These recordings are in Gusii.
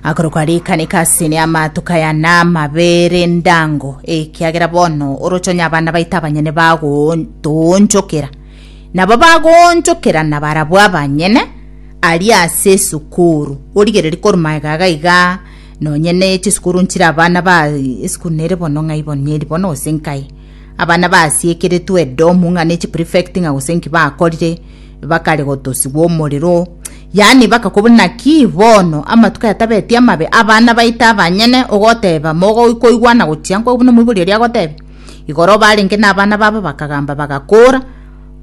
akorokwa rikaneka asene amatukaya na amabere ndango ekiagera bono orochonya abana baito abanyene bagotoonchokera nabo bagoonchokera na barabwo abanyene ari ase esukuru origereri korwa magega iga iga nonye na echisukuru nchire abana ba esukuru nere bono ng'ai bono neri bono gose nkai abana basiekeretwe edomu ng'a ne chiprefect ng'a gose nki bakorire Bakare gotosigwa omorero, yaani bakakobwa naki bono amatuko aya tabeti amabe, abana baito abanyene, ogoteba mogoikoigwana gochia nkwo buna omoibori oria agotebia. Igoro barenge nabana babo bakagamba bagakora,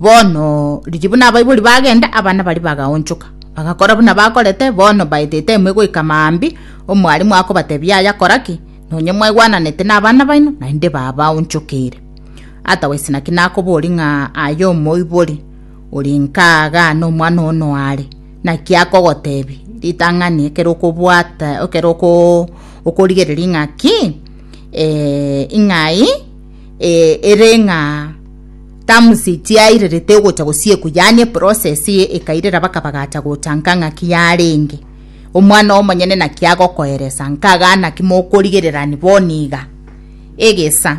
bono riria buna abaibori bagenda abana baria bagaonchoka bagakora buna bakorete, bono baete etime egoika maambia omwalimu akobatebia yaya kora ki, nonye mwaigwananete nabana baino naende babaonchokeire. Otherwise naki nakobori ng'a aye omoibori. ore inka aaga nomwana one oare, naki akogoteebia ritang'ani ekero okobwata ekero okorigereria ng'a ki ing'ai ere ng'a terms tiairerete ogocha gosiekwa yaani eprocess ekairera mpaka bagacha gocha nka ng'aki yarenge, omwana omonyene naki agokoeresa nka iga naki mokorigererani bono iga egesa.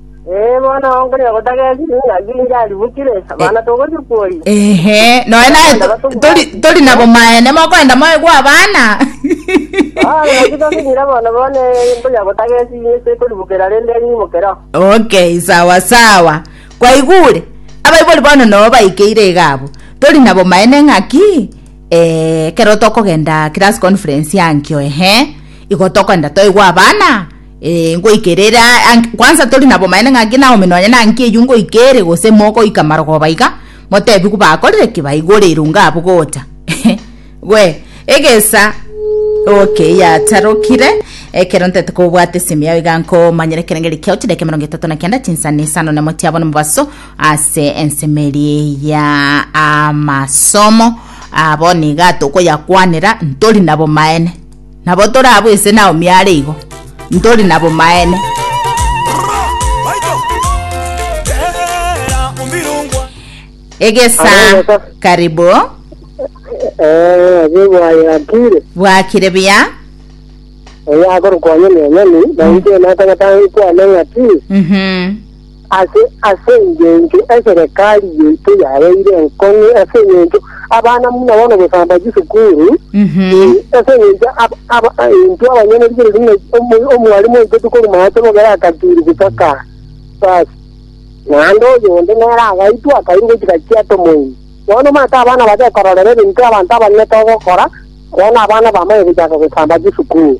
Ee, bono onkoria gotagesi ng'aki inche aribukire, abana togochia kworia. Ehe, noe naye to- tori- tori nabo maene mokoenda moegwa abana Ah, ng'aki tosinyire bono bono eh, nkoria gotagesi inche sekoribukera rende enyimokero. okay sawa sawa kwaigure abaibori bono noo baikeire iga abwo tori nabo maene ng'aki eh, ekero tokogenda class conference yankio ehe igo tokoenda toigwa abana Ee, ngoika ere ere a- ank- kwansa tori na bomaene ng'a ngina Naomi nonye na nki eyio ngoika ere gose mogoika marogoba iga, motebigwe bakorire ki baigore irungo abwo gocha. Gwe, egesa Okay, yatarokire. Ekero ntete kobwata esimi yao iga nkomanyire ekerengeri kiao chidaka emerongo etato na kenda chinsani isano nemo chiabo nomobaso ase ensemeri ya amasomo abo niga tokoyakwanera ntori na bomaene Nabo tore abwo ise Naomi are igo, ntori na bomaene. Egesaa karibu. Ee, bwayakire. Bwakire buya. Oyo akorokwa onye nenyoni, nainche natagete angikwane ng'aki. Mhm. Ase engencho eserekari yaito yabeire enkong'u, ase engencho abana buna bono gosamba chisukuru, ee, ase engencho intwe abanyene rikorwa ring'ai, omwalimu oito tokoruma ase omogera akaturia gocha kaa, basi naende oyonde nere agaitwa akairwa gochia gachia ata omoerio. Bono omanyete abana bagekororera ebinto abanto abanene togokora, bono abana bamanye gochaka gosamba chisukuru.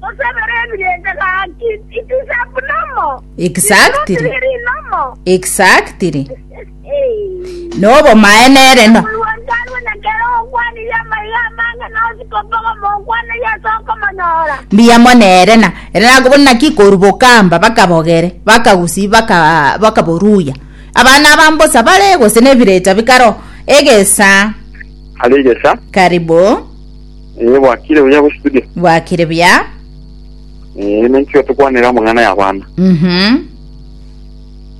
Tosabere ebirencha gaki. Itisap nomo. Exactly. Tiri nomo. Exactly. Nobomaene ere no. Omolwantarwe na kera okwanirie amaiga amange nosi kobogo mokwanirie ase okomonyora. Mbuya mono ere na ere nakobona naki koru bokamba bakabogere bakagusi baka bakaboruya. Abana abambosa bare gose nebirecha bikaro egesa. Alegesa. Karibu. Eh, bwakire buya bo studio. bwakire buya Eh, emenchio tukwanera amang'ana ya abana. Mhm,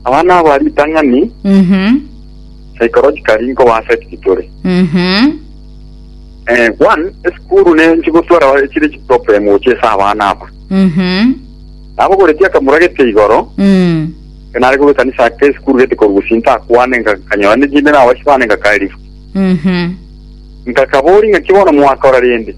Abana abo ari itang'ani mhm, psychologically nko ba affect tore. mhm, Eh, one, esukuru ne nchigotwara bare chire chiproblem gocha esa abana aba. mhm, Abo goreti akamura gete igoro, mm, kenare kobe kanisa ake esukuru gete korugusi ntakwane nga kanyora ne jinde na abashi bane nga kairi. mhm, Nkakabori, Ng'aki bono mwakora rende?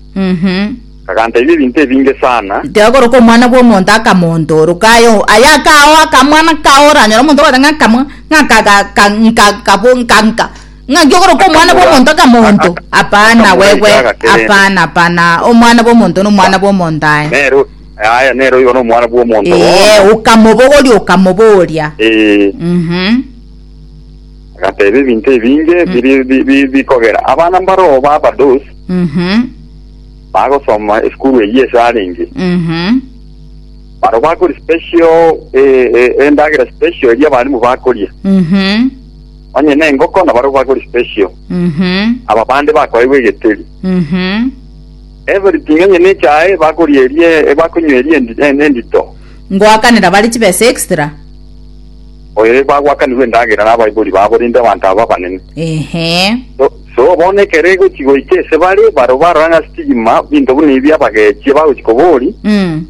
Kagantaibia ebinto ebinge sana. Tiagoroka omwana bw'omonto akamontoroka aye aye akao akamwana kao oranyore omonto ogoteba ng'a akamwa ng'a akaga ka nka kabo nka nka ng'aki ogoroka omwana Akamura- bw'omonto akamonto aka- hapana akamura wewe ekiaga kerende. hapana hapana omwana bw'omonto na omwana bw'omonto aye Nero aya nero igo nomwana bw'omonto ee bono. okamobogoria okamoboria Eh, mhm Agateeba, Ebinto ebinge biri- bi- bi- bikogera abana mbaroo b'abadoos Mhm. bagosoma esukuru eyio ase arenge. Mhm. Barabwo bakori special eh, eh, endagera special eria abarimu bakoria. Mhm. Onye nengoko nabarabwo bakori special. Mhm. Aba bande bakoewa egeteri. Mhm. Everything onye nechae bakoria erie eh, bakonywa erie endi- eh, endito. Ngoakanera bare chibesa extra. oyo bagwakanigwe endagera nabaibori babo rende abanto aba abanene. Ehe. So, so bono ekero egochi goika ase bare, barabwo barora ng'a sitigima binto buna ebi abagechie bagochi kobori, Mm.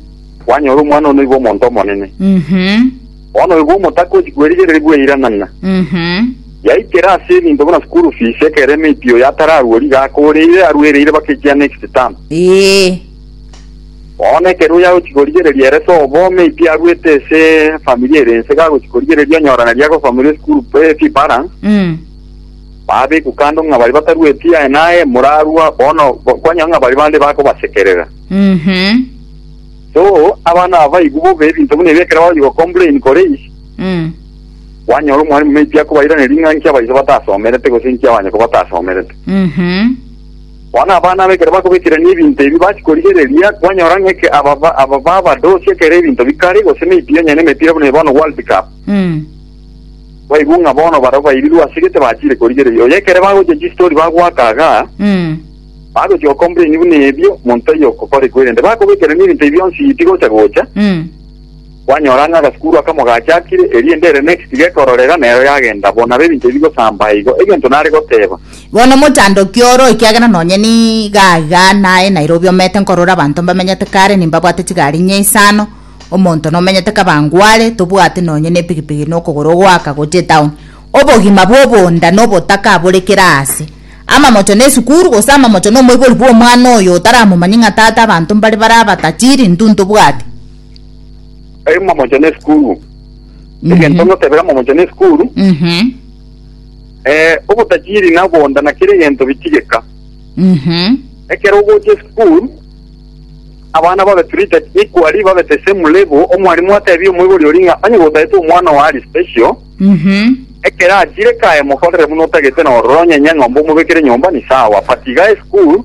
kwanyora omwana one oiba omonto omonene. Mhm. Bono oiba omotaka ochi kwerigereria bweiranana. Mhm. Yaikera ase ebinto buna school fees ekero emeiti oyo atararwori gaka oreire arwereire baka ekia next term. Ee. Bono ekero oyo agochia korigereria ere sobo, maybe aruete ase familia ere ense, gagochia korigereria onyorane ria gosomeria esukuru pe- fee balance, Mm. babekwa kando ng'a baria batarueti aye naye, morarua bono bo- kwanyora ng'a baria bande bakobasekerera. Mhm. So, abana aba baigwe bobe ebinto buna ebi ekero bagochia gocomplain kore is, Mm. kwanyora omwalimu maybe akobairaneria ng'a inki abaiso batasomerete gose inki abanyoko batasomerete. Mhm. Bono abana aba ekero bakobekerania ebinto ebi bachia korigereria, kwanyora ng'a eke aba ba- aba babadosia ekero ebinto bikare, gose emepira onye nemepira buna eye bono World Cup. Baigwe ng'a bono barabwo bairirwe ase gete bachiire korigereria. Oyo ekere bagochia chistori bagoaka iga, bagochia gocomplaini buna ebio, monto taiyo okokorekwa erinde bakobekerania ebinto ebi bionsi tigocha gocha. Kwanyora ng'a agasukuru aka mogachakire, erinde ere next gekororera, nero yagenda. Bono nabo ebinto bigosambaa igo. Egento nare goteba. Bono mochandoki oro, ekiagera nonye niga iga naye Nairobi omete nkorora abanto mbamenyete kare nimbabwate chigari inye isano, omonto nomenyete Kabangware, tobwate nonye nepigipigi nokogoro goaka gocha etown. Obogima bwobonda nobotaka abore kera aase. Amamocho nesukuru gose amamocho nomoibori bwomwana oyo otaramomanye ng'a tata abanto mbare bare abatachiri, intwe ntobwati. Eri momocha ne sukuru. Egento Mhm. ngotebera momocha ne sukuru. Mhm. Eh, obotachiri na bonda na kere egento bichigeka. Mhm. Ekero ogocha esukuru, abana babe treated equally, babe the same level. Omwalimu atebie omoibori oria ng'a onye gotagete omwana owe ari special, Mhm. ekero achire kae mokorere buna otagete na ororo, onye enye eng'ombe omobekere nyomba ni sawa. But iga esukuru,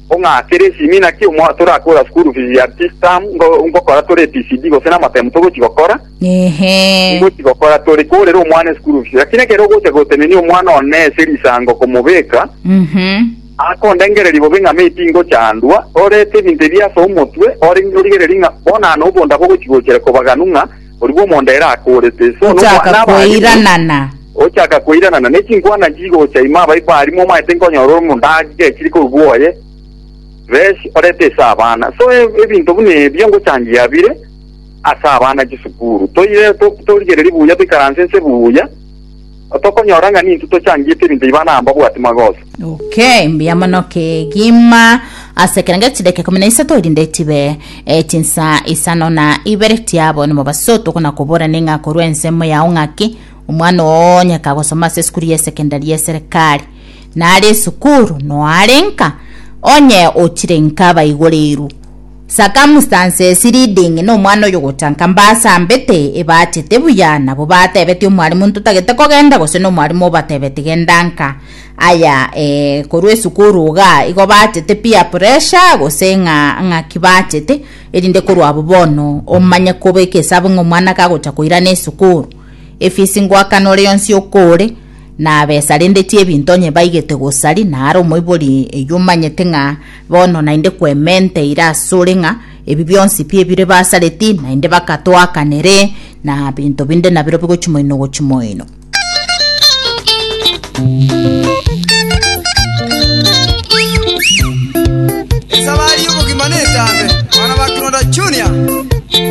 Ong'aakere esimi naki omwao torakora school fees ya this term ngo ngokora tore PCD gose na amatemu togochi gokora Ehe. ngochi gokora tore korera omwana school fees lakini ekero ogocha gotenenia omwana one ase risango komobeka Mhm. akondengereria bobe ng'a maybe ngochandwa orete ebinto ebi ase omotwe ore origereri ng'a bonano obonda bogochi gochera kobaganu ng'a Oribwo omonda ere akoorete, so Ochaka nokwana abarimu, koiranana. ochaka koiranana, ne chinkwana chigocha ime abayi barimu omaete nkonyora ore omonda agechire korwa oye, Resh, orete ase abana. So e- ebinto buna ebio ngochangia bire ase abana chisukuru. Toire to- torigererie buya toikaranse nse buya, Tokonyora ng'a ninto tochangiete ebinto ebi bana amba bwati magoso. Okay, mbuya mono kegima ase ekero nge chidakika ikomi na isato erinde chibe eh, chinsaa isano na ibere tiabo nimo baso tokona kobora ning'a korwa ensemo yao ng'aki omwana oo onye kagosoma ase esukuru ya esekendari ya eserekari nare esukuru noare nka onye ochire nka baigoreirwe Circumstances leading na omwana oyo gochanka mbasambete, ebachete buya, nabo batebetie omwalimu ntotagete kogenda gose na omwalimu obatebeti genda nka. Aya eh, korwa esukuru iga igo bachete peer pressure gose ng'a ng'aki bachete erinde korwa abwo bono omanye kobeka esabu ng'a omwana kagocha koirana esukuru efisi ngoakana ore yonsi okore na besa rende chiebinto onye baigete gosari naro omoibori eywo omanyete ng'a Bono naende Kwemente eire asore ng'a ebi bionsi pi ebire basareti, naende bakatoakanere, na binto binde nabirobio gochia moino gochia moino. Esabari y'obogima netambe, abana ba Kironda Junior.